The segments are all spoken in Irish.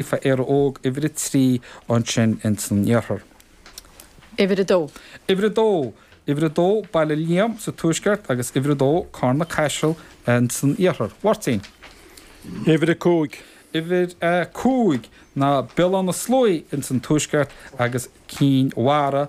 F, Éire Óg, uimhir a trí, ansin ins an iarthar. uimhir a dó. uimhir a dó. uimhir a dó, Baile Liam, sa tuaisceart, agus uimhir a dó, Carna Caiseal, ins an iarthar. Mháirtín. uimhir a cúig. uimhir a cúig, ná Béal Átha na Sluaighe, ins an tuaisceart, agus Cinn Mhara,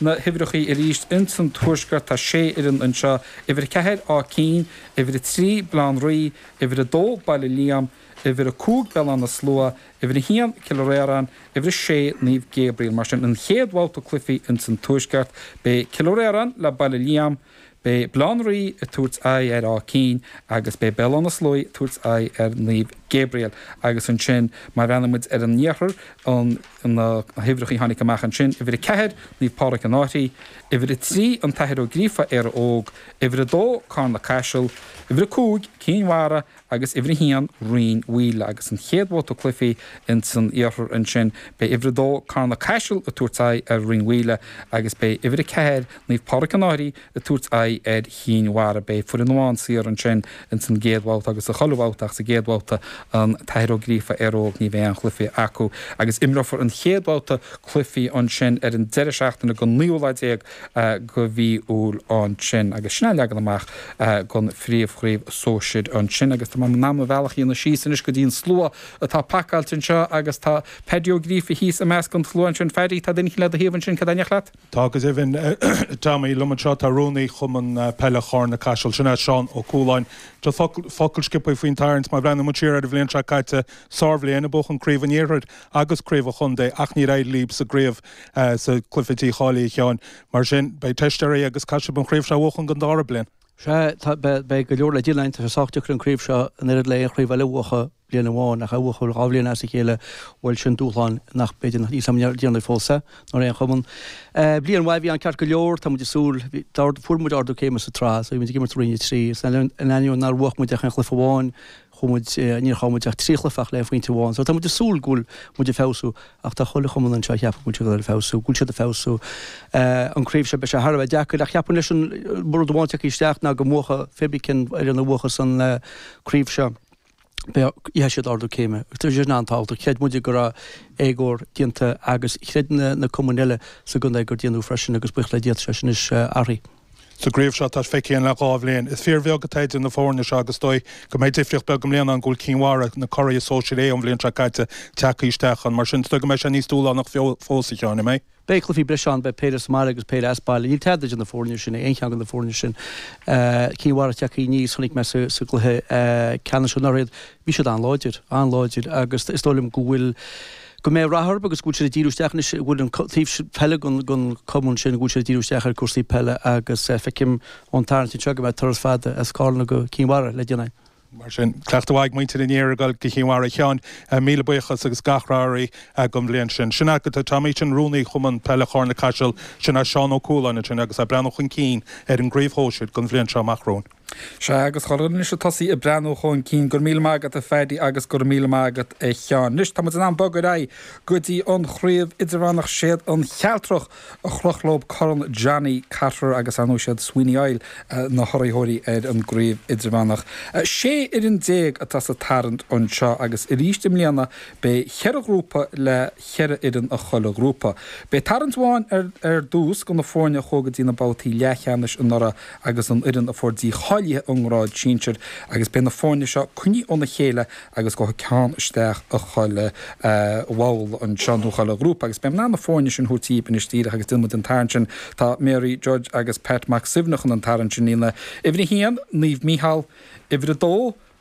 na huimhreachaí arís ins an Tuaisceart, tá sé fhoireann anseo, uimhir a ceathair Áth Cinn, uimhir a trí Baile Átha an Rí, uimhir a dó Baile Liam, uimhir a cúig Béal Átha na Sluaighe, uimhir a haon Cill Fhir Iarainn, uimhir a sé Naomh Gabriel. Mar sin, an chéad bhabhta cluichí ins an Tuaisceart, beidh Cill Fhir Iarainn le Baile Liam, Beidh Baile Átha an Rí ag tabhairt aghaidh ar Áth Cinn agus beidh Béal Átha na Sluaighe ag tabhairt aghaidh ar Naomh Gabriel agus ansin má bhreathnaíonn muid ar an iarthar an na huimhreacha a tháinig amach ansin, uimhir 4 Naomh Pádraig An Fhairche, uimhir 3 an tAthair Ó Gríofa Éire Óg, uimhir 2 Carna Caiseal, uimhir 5 Cinn Mhara agus uimhir a haon Rinn Mhaoile agus an chéad bhabhta cluichí ins an iarthar ansin beidh uimhir a dó Carna Caiseal ag tabhairt aghaidh ar Rinn Mhaoile agus beidh uimhir a ceathair Naomh Pádraig An Fhairche ag tabhairt aghaidh ar Chinn Mhara. Beidh foireann amháin saor ansin ins an gcéad bhabhta agus sa chuile bhabhta ach sa gcéad bhabhta an tAthair Ó Gríofa Éire Óg ní bheidh aon chluiche acu agus imreofar an chéad bhabhta cluichí ansin ar an deireadh seachtaine den naoú lá déag de mhí Iúil ansin agus sin an leagan amach don phríomhchraobh sóisir ansin agus tá mé in ann mo bhealach a dhéanamh síos anois go dtí an slua atá pacáilte anseo agus tá Paddy Ó Gríofa thíos i measc an tslua ansin. Phaddy, tá duine eicínt le do thaobh ansin, cé atá in éineacht leat? Tá, go deimhin, a Tommy. Liom anseo tá Rúnaí Chumann Peile Charna Caiseal, sin é Seán Ó Cualáin. Seo focal sciobtha faoin tarraingt, má bhreathnaíonn muid siar ar an bhliain seo caite, sárbhliain a buadh an Craobh an Iarthair agus Craobh an Chontae ach níor éirigh libh sa gCraobh sa cluife cáilithe a Sheáin. Mar sin, beidh teist oraibh agus caithfidh sib an chraobh seo a bhuachan don dára bliain. Sea, tá, beidh, beidh go leor le déanamh, tá sé sách deacair an craobh seo an oiread le aon chraobh eile a bhuachadh bliain amháin, ach a bhuachadh dhá bhliain as a chéile, bhuel sin dúshlán nach, b'fhéidir nach ndearnadh fós é, nó ar aon chumann. Bliain mhaith a bhí ann ceart go leor, tá muid ag súil, bhí, d'ard, fuair muid ardú céime sa tsraith, so bhí muid ag imirt i Roinn a Trí, so in ainneoin nár bhuach muid ach aon chluife amháin, Chuaigh muid, níor chaill muid ach trí chluife ach le aon phointe amháin so tá muid ag súil go bhfuil muid ag feabhsú ach tá chuile chumann anseo a cheapann go bhfuil siad ag feabhsú, go bhfuil siad ag feabhsú. An craobh seo beidh sé thar a bheith deacair ach cheapfainn leis an, rud amháin a thiocfaidh isteach ná go mbuafaidh pé ar bith cén fhoireann a bhuafas an craobh seo, gheobhaidh siad ardú céime. Tá sé sin an-tábhachtach. Chreid muid go raibh éagóir déanta agus chreid na cumainn eile sa gcontae gur déanadh freisin agus buíochas le Dia tá sé sin anois athraithe. Sa gcraobh seo atá feicthe againn le dhá bhliain, is fíorbheag atá idir na foirne seo agus is dóigh go mbeidh difríocht beag i mbliana ann go bhfuil Cinn Mhara, na curaidh sóisir A ón bhliain seo caite, tagtha isteach ann. Mar sin, is dóigh go mbeidh sé níos dúshlánach fós, a Sheáin, an mbeidh? Beidh cluichí breise ann, beidh péire sa mbaile agus péire as baile. Níl tada idir na foirne sin, aon cheann de na foirne sin. Cinn Mhara tagtha aníos, chonaic mé sa gcluiche ceannais anuraidh iad. Bhí siad an-láidir, an-láidir agus is dóigh liom go bhfuil, go mbeidh rath orthu agus go bhfuil siad ag díriú isteach anois, go bhfuil an taobh peile den Chumann sin, go bhfuil siad ag díriú isteach ar chúrsaí peile agus feicim ón tarraingt anseo go mbeidh turas fada as Carna go Cinn Mhara le déanamh. Mar sin, cleachtadh mhaith ag muintir an iarthair ag goil go Cinn Mhara. A Sheáin, míle buíochas agus gach rath oraibh don bhliain sin. Sin agat é, a Tommy, sin Rúnaí Chumann Peile Charna-Caiseal, sin Seán Ó Cualáin ansin agus é ag breathnú chun cinn ar an gCraobh Shóisir don bhliain seo amach romhainn. Sea, agus caithfidh muid tosaí ag breathnú chun cinn. Go raibh míle maith agat, a Phaddy, agus go raibh míle maith agat, a Sheáin. Anois, tá muid in ann bogadh ar aghaidh go dtí an Chraobh Idirmheánach. Siad an Chealtrach a chroch leo Corn Johnny Cotter, agus, ar ndóigh, siad Sweeney Oil na hurraitheoirí ar an gCraobh Idirmheánach. Sé fhoireann déag atá sa tarraingt anseo, agus arís i mbliana beidh cheithre ghrúpa le cheithre fhoireann i chuile ghrúpa. Beidh tarraingt amháin ar dtús do na foirne a chuaigh go dtí na babhtaí leathcheannais anuraidh, agus an fhoireann a fuair dícháiliú ón ngrád sinsir agus beidh na foirne seo coinnithe óna chéile agus gabhfaidh ceann isteach i chuile bhabhla anseo nó chuile ghrúpa agus beidh mé in ann na foirne sin a thabhairt dhaoibh anois díreach agus déanfaidh muid an tarraingt sin tá Mary Judge agus Pat Mac Suibhne chun an tarraingt sin a dhéanamh uimhir a haon Naomh Mícheál uimhir a dó